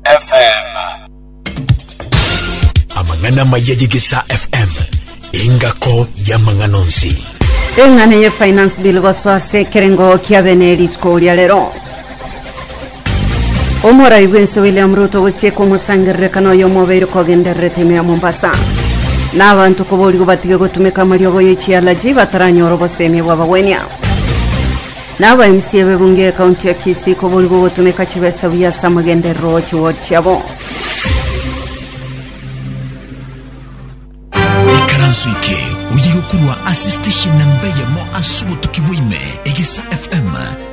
FM. Amang'ana maya y'Egesaa FM, engako y'amang'ana onsi. eng'ana ye finance bill gosoa ase ekerengo kia bene rituko ria rero omorai bwense william ruto gosieka omosangererekano oyo omobeire kogendererete ime ya mombasa na abanto koborigwa batige gotumeka amariogo ye chialaji bataranyora obosemi bw'abagwenia Na abaimisi ebebungo ekaunti ya Kisii koborigwe ogotumeka chibesa buya ase amagenderero a chiward chiabo. Ikaranso eke oyige korwa ase station na mbeyemo ase obotuki bwaime Egisa FM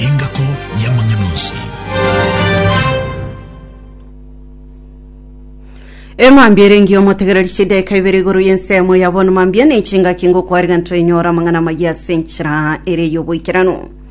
engako y'amang'ana onsi. emambia erengi omotegereri chidaika ibere igoro y'ensemo ya bono mambia ne chingaki ngokwariga ntoinyora amang'ana amaya ase enchera ere y'oboikeranu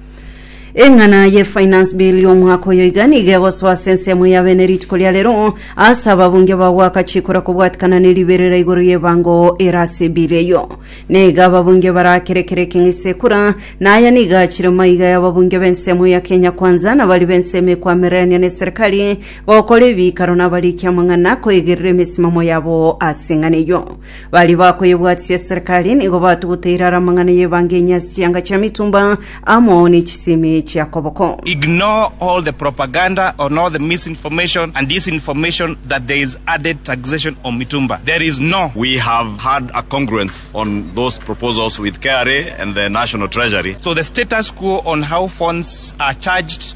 eng'ana ye finance bill y'omwaka oyo iga niga egosoa ase ensemo ya bene rituko ria rero ase ababunge bagwaka chikora kobwatikana ne riberera igoro y'ebango ere ase bill eyo niga ababunge barakere kere ekeng'isa ekura naya niga achire maiga y'ababunge b'ensemo ya kenya kwanza na bari b'ensemo ekwamererania ne serikali Gokora ebiikaro nabariki amang'ana koegerera emesimamo yabo ase eng'ana eyio. Baria bakoyebwatisia eserekari nigo batuguta irara amang'ana y'ebangenya ase chianga chia mitumba amo ne chisemi chia koboko. Ignore all the propaganda on all the misinformation and disinformation that there is added taxation on mitumba. There is no. We have had a congruence on those proposals with KRA and the National Treasury. So the status quo on how phones are charged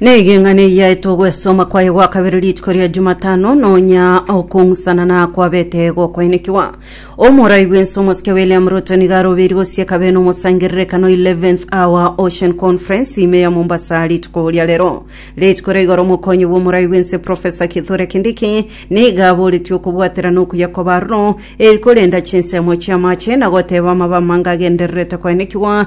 Negeng'ana eyia etogwesoma kwaye gwa kabere rituko ria Jumatano nonya okong'usanana kwabete gokoenekigwa. Omorai bwense omosike William Ruto nigo arobeiri gosieka bene omosangererekano 11th Hour Ocean Conference ime ya Mombasa rituko ria rero. Rituko ria igoro omokonyi bw'omorai bwense Professor Kithure Kindiki nigo aboretie okobwatera na okuya kw'abaroro eri korenda chinsemo chi'amache na goteba amabamanga agendererete koenekigwa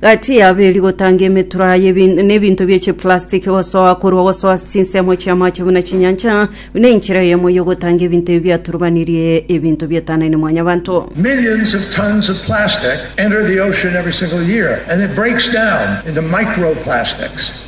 Gati y'abeeri gotanga emetura y'ebin- n'ebinto bie chiplastiki gosoa korwa gosoa ase chinsemo chi'amache buna chinyancha, buna enchera eyemo y'ogotanga ebinto ebi biaturubanirie ebinto bietanaine Mwanyabanto. Millions of tons of plastic enter the ocean every single year, and it breaks down into microplastics.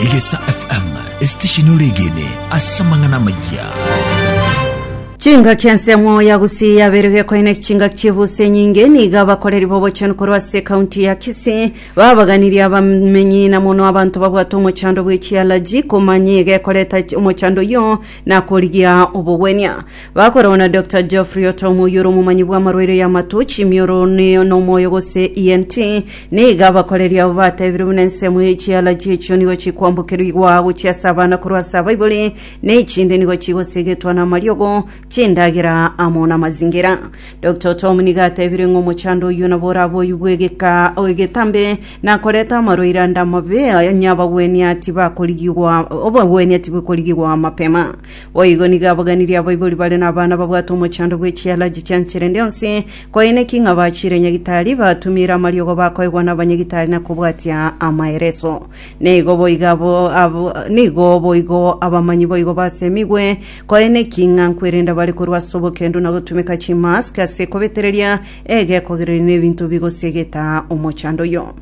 Egesa FM esitesheni oregene ase amang'ana amayia. Chingaki ensemo ya Gusii yaberwe gekoine chingaki chi'ebusi enyinge nigo abakoreri b'obochenu korwa ase ekaunti ya Kisii babaganirie abamenyi na mono abanto babwate omochando bw'echialaji komanya egekoreta omochando oyio na korigia obogwenia. Bakoragwa na Doctor Geoffrey Otom oyio ore omomanyi bw'amarwaire y'amato, chimioro, ne n'omoyo gose ENT. Nigo abakoreri abo batebire buna ensemo ye chialaji echio nigo chikwambokerigwa gochia ase abana korwa ase abaibori, ne echinde nigo chigosegetwa namariogo, chindagera amo namazingira. Doctor Otom nigo atebire ng'a omochando oyio nabo orabe oyio bw'egeka egetambe nakoreta amarwaire ande amabe, onye abagwenia tibakorigigwa obogwenia tibokorigigwa mapema. Boigo nigo abaganirie abaibori bare nabana babwate omochando bwe chialaji chia nchera ende yonsi, koeneki ng'a bachiire nyagitari, batumiire amariogo bakoegwa nabanyagitari na kobwatia amaereso. Nigo boigo abo abo nigo boigo abamanyi boigo basemigwe, koeneki ng'a nkwerenda bare korwa ase obokendu na gotumeka chimask ase kobetereria egekogereria na ebinto bigosiegeta omochando oyio.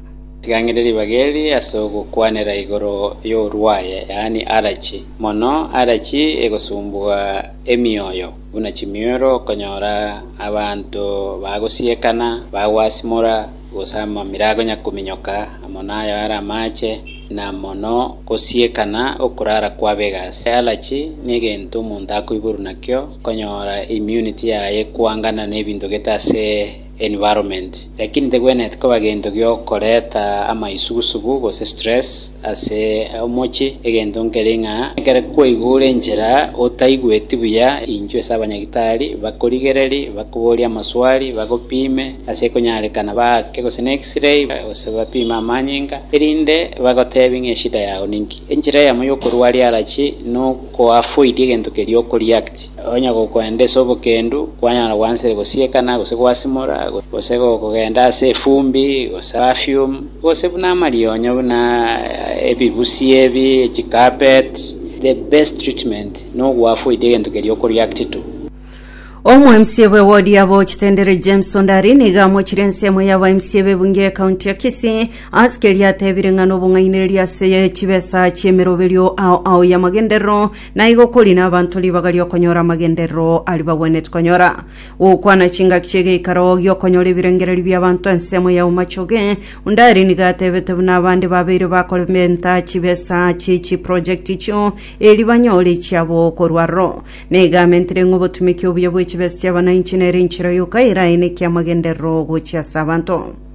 Ring'ana ribaga eri ase ogokwanera igoro y'orwaye, yaani allergy, mono allergy egosumbua emioyo buna chimioro okonyora abanto bagosiekana, bagwasimora gose amamira akonya kominyoka amo nayo are amache na mono gosiekana okorara kwabega ase allergy negento omonto akoiborwa nakio okonyora immunity yaye ekoangana nebinto gete ase environment, lakini tegwenereti koba gento giokoreta amaisugusugu gose stress ase omochie, egento nkere ng'a ekero kwaigure enchera otaigweti buya, inchwe ase abanyagitari bakorigereri, bakoborie amaswali, bagopime ase ekonyarekana baake gose ne X-ray gose bapime amanyinga, erinde bagotebie ng'a eshida yao ninki. Enchera eyemo yokorua riarachi nokoavoid egento keria oko react. Onye gokwenda ase obokendu, kwanyara gwansire gosiekana, gose gwasimora, gose gokogenda ase efumbi, gose perfume, gose buna amarionyo buna ebibusi ebi, chicarpet, the best treatment nogwafu oite egento keria oko react to. Omoemisia bwe wodi ya Bochitendere James Ondari nigo amochire ensemo ya abaemisia b'ebunge ye county ya Kisii ase keria atebire ng'a nobong'ainereria ase chibesa chi'emeroberio ao ao y'amagenderero Naigo kori nabanto ribaga ri'okonyora amagenderero aria bagwenereti konyora. Gokwana chingaki chi'egeikaro gi'okonyora ebirengererio bi'abanto ensemo ya Umachoge, onde aria nigo atebete buna abande babeire bakorementa chibesa chie chiprojekti echio erio banyore echiabo korwa aroro. Nigo amentire ng'a obotumeki obuya bw'echibesa chi'abanainchi nere enchera yoka eraenekie amagenderero gochia ase abanto.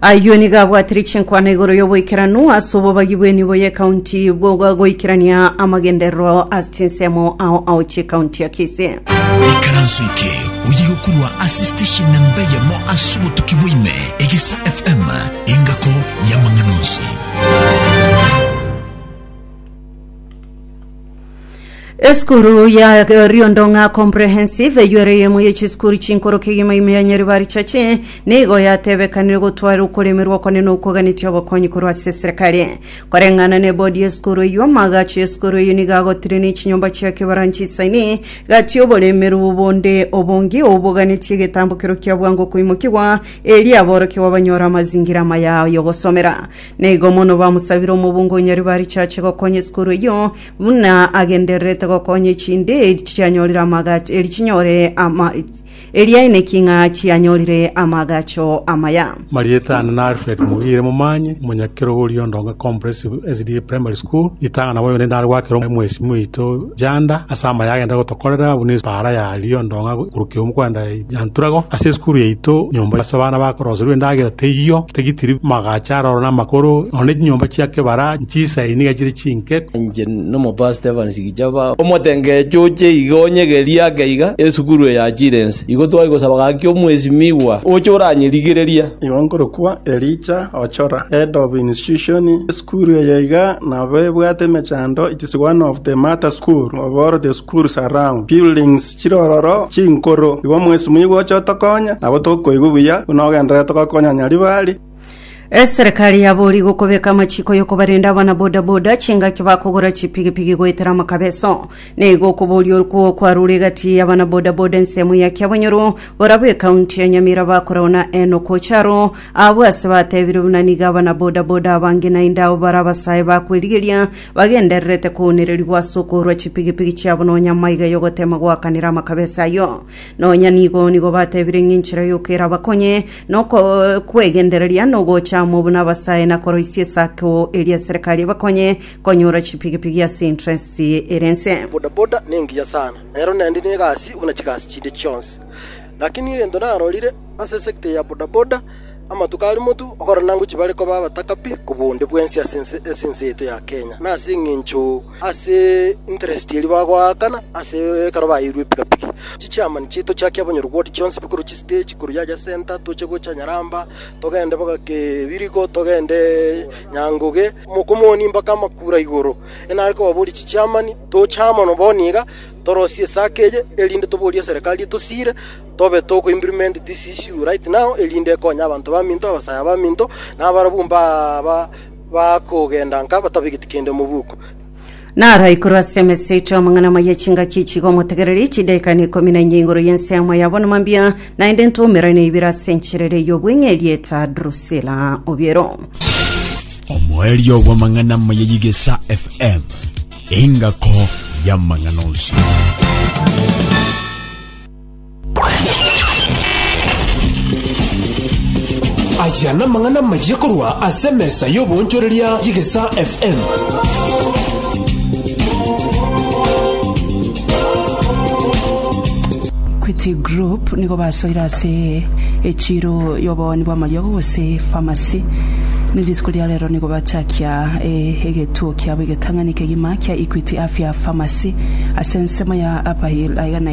Ayio nigo abwatire chinkwana igoro y'oboikeranu ase obobagi bw'enibo y'ekaunti bwa goikerania amagenderero ase chinsemo ao ao chi'ekaunti ya Kisii. Ikaranso eke oye gokurwa ase station namba eyemo ase obotuki bwaime Egesa FM engako y'amang'ana onsi. Esukuru ya Riondong'a Comprehensive eywo ere eyemo ye chisukuru chinkoro kegima ime ya Nyaribari Church nigo yatebekanire gotwara okoremerwa okone na okoganetia obokonyi korwa ase eserekari. Koreng'ana na ebodi y'esukuru eywo, amagacho y'esukuru eywo nigo agotire ne chinyomba chia kebaranchi isaini gati oboremerwu bonde obonge oboganetie egetambo kerokio bwango koimokigwa erio aborokigwa banyore amazingira amaya y'ogosomera. Nigo mono bamosabire omobunga o Nyaribarichi ache gokonya esukuru eyio, buna agendererete gokonya echinde eri chianyorire amagacho eri chinyore ama eri aineki ng'a chianyorire amagacho amaya. Marieta ane na Alfred Mugire Momanye, omonyakerogoria o Ndonga Comprehensive SDA Primary School, ritang'ana bobe onde nare gwakera omo mwesimi oito Janda ase amaya agenda gotokorera buna epaara ya Rio Ndonga korwa Kiomu kwenda Nyanturago ase esukuru yaito nyomba as'abana bakoroserwa endagera teiyo, tigitiri magacha aroro namakoro, nonya chinyomba chia kebara nchisae niga chire chinke. Inche nomobaa Stephens gicha ba omotengecho oche iga onyegerie ake iga esukuru eye yachire ense. Igo twari gosaba gaki omwesimigwa oche oranyerigereria. Igo nkorokwa Elija Ochora, Head of Institution, esukuru eye iga nabo ebwate emechando it is one of the matter school of all the Cool surround buildings chirororo chinkoro igo mwesi moigwe oche otokonye nabo tokoigwa buya buna ogenderere togokonya Nyaribari. Eserekari yabori gokobeka amachiko yokobarenda abana boda boda chingaki bakogora chipigipigi goetera amakabeso. Neigo okoboria okwo kwarure egati yabana boda boda ensemo ya Kiabonyoru borabu ekaunti ya Nyamira bakorao na Enock Ocharo abwo ase batebire buna nigo abana boda boda abange naende abo bare abasae bakwerigeria bagendererete kounererigwa ase okoorwa chipigipigi chiabo nonya amaiga y'ogoteema goakanera amakabesi ayio. Nonya nigo nigo batebire ng'a enchera yoka erabakonye nokwegendereria nogocha amo buna abasae na koroisia esako eria eserekari ebakonye konyora chipigipigi ase interest ere ense. Bodaboda nengiya sana, nero naende negasi buna chigasi chinde chionsi. Lakini egento narorire ase sector ya bodaboda, Amatuko aria motu okorora nango chibare koba abataka pi kobua onde bwensi ase ense ase ense yaito ya Kenya, na ase eng'encho ase interest eria bagoakana ase ekero baeirwe epiga pige. Chichiamani chiaito chiakia bonyoru bw'odi chionsi pi korwa chistage korwa yacha center toche gocha Nyaramba, togende boka Kebirigo, togende Nyangoge, Mokomoni mbaka Makura igoro. Enare kobaboria chichiamani toche amo na bono iga torosie esake eye erinde toborie eserekari etosiire. Tobe togo implement this issue right now erinde ekonye abanto baminto, abasaya baminto, na abarabwo mbaba bakogenda nka batabegeti kende mobuko. Naro aikuru ase emesito amang'ana amaya chingaki chigomotegereria chidaika na ikomi na inye igoro y'ensemo yabo na mambia, naende ntoumera na ibere ase enchera ere y'obweng'e erieta Drusila obiero. omoerio bw'amang'ana amaya y'egesa FM, engako y'amang'ana onsi. Aya namang'ana amayia korwa ase emesa y'oboonchoreria y'Egesaa FM. Equity Group nigo basoire ase echiro y'obooni bw'amariogo gose pharmacy na rituko ria rero nigo bachakia eh, egetuo kiabo egetang'ani kegima kia Equity Afya Pharmacy ase ensemo ya Upper Hill aiga na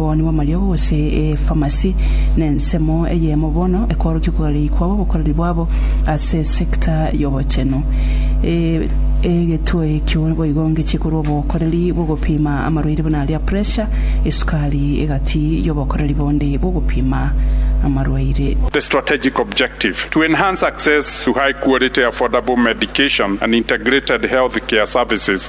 Omobani bw'amariogo gose efamasi nensemo eyemo bono ekorokio okogarei kwabo obokoreri bwabo ase esecta y'obochenu. Egetwe ekio boigo ngechie korwa obokoreri bw'ogopima amarwaire buna aria pressure, esukari egati y'obokoreri bonde bw'ogopima amarwaire. The strategic objective, to enhance access to high-quality affordable medication and integrated healthcare services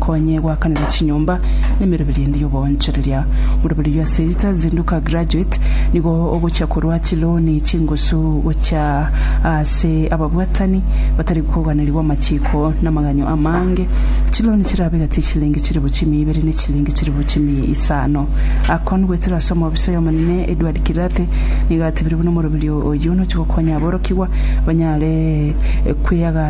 Konye goakanera chinyomba na emeroberi ende y'oboonchoreria. Moroberi oyio ase Rita Zinduka Graduate nigo ogochia korwa chilooni chingusu gochia ase ababwatani batari koganeriwa amachiiko na amaganyo amaange. Chilooni chirabe gati y'echilingi chilifu chimia ibere ne chilingi chilifu chimia isano. Akon goetera ase omoofisa oy'omonene Edward Kirathe nigo atebirie buna omoroberi oyio nochi gokonya aborokigwa banyare kweaga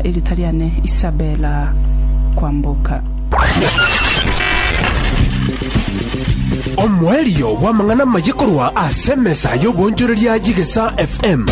Erita riane Isabella Kwamboka. Omoerio bw'amang'ana amaya korwa ase emesa y'obonchoreria y'Egesaa FM.